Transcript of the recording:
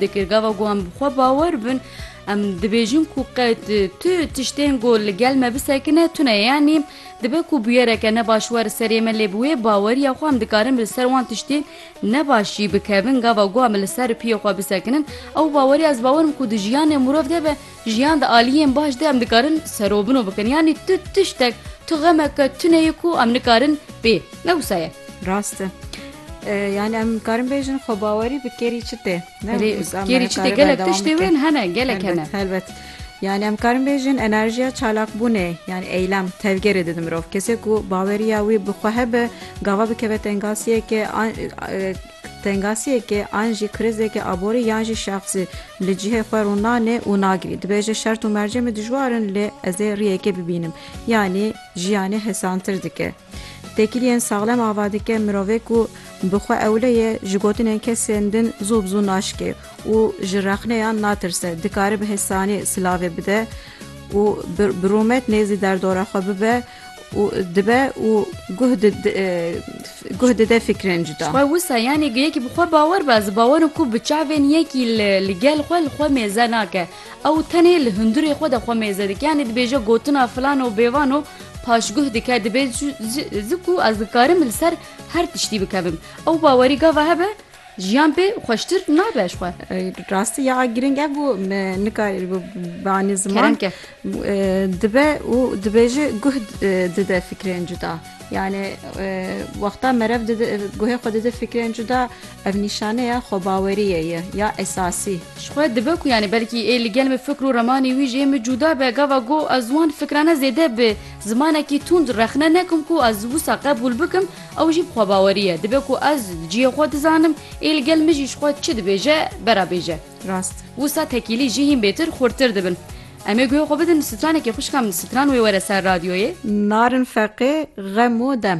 dikir. Gava ku em bi xwe bawer bin em dibêjin ku qet tu tiştên ku li gel me bisekine tune yanî dibe ku bûyereke ne baş were serê me lê bi wê baweriya xwe em dikarin li ser wan tiştên ne baş jî bikevin. Gava ku em li ser piyê xwe bisekinin ew baweriya ez bawer im ku di jiyanê mirov de be Jiyan di aliyên baş de em dikarin serobino bikin yanî tu tiştek tu xemeke tuneyê ku em nikarin bê ne wisa ye. Rast e. Yani em karin bêjin xwe bawerî bi kêrî çi tê kêrî çi tê gelek tiştê wên hene gelek hene helbet. Yani em karin bêjin enerjiya çalakbûnê yani eylem tevgerê didin mirov kesê ku baweriya wî bi xwe hebe gava bikeve tengasiyekê Tengasiyeke an jî krizeke aborî yan jî şexsî li cihê xwe rû nanê û nagirî. Dibêje şert û mercê min dijwar in lê ez ê riyekê bibînim. Yanî jiyanê hesantir dike. Têkiliyên saxlem ava dike mirovê ku bi xwe ewle ye ji gotinên kesên din zû bi zû naşikê û ji rexneyan natirse. Dikare bi hesanî silavê bide û bi rûmet nêzî derdora xwe bibe. û dibe û guh guh dide fikrên cuda. Xwe wisa yanê yekî bi xwe bawer be, ez ê bawer bikim ku bi çavên yekî li li gel xwe li xwe mêze nake. Ew tenê li hundirê xwe de xwe mêze dike. Yanê dibêje gotina filano bêvano paşguh dike dibe ji ji ku ez dikarim li ser her tiştî bikevim. Ew bawerî gava hebe? Jiyan pê xweştir nabe ji xwe. Rastî ya girîng e bû me nikarî bû banî ziman dibe û dibêje guh dide fikrên cuda. Yani wexta merev guhê xwe dide fikrên cuda ev nîşane ya xwebaweriyê ye ya esasî. Ji xwe dibe ku yani belkî ê li gel min fikr û remanê wî ji min cuda be gava ku ez wan fikrane zêde bi zimanekî tund rexne nekim ku ez wisa qebûl bikim Ew jî bi xwebawerî ye, dibe ku ez cihê xwe dizanim, ê li gel min jî ji xwe çi dibêje bera bêje. Rast. Wisa tekîlî jî hîn bêtir xurtir dibin. Em ê guhê xwe bidin stranekê xwişka min, stran wê were ser radyoyê. Narin feqê xem û dem.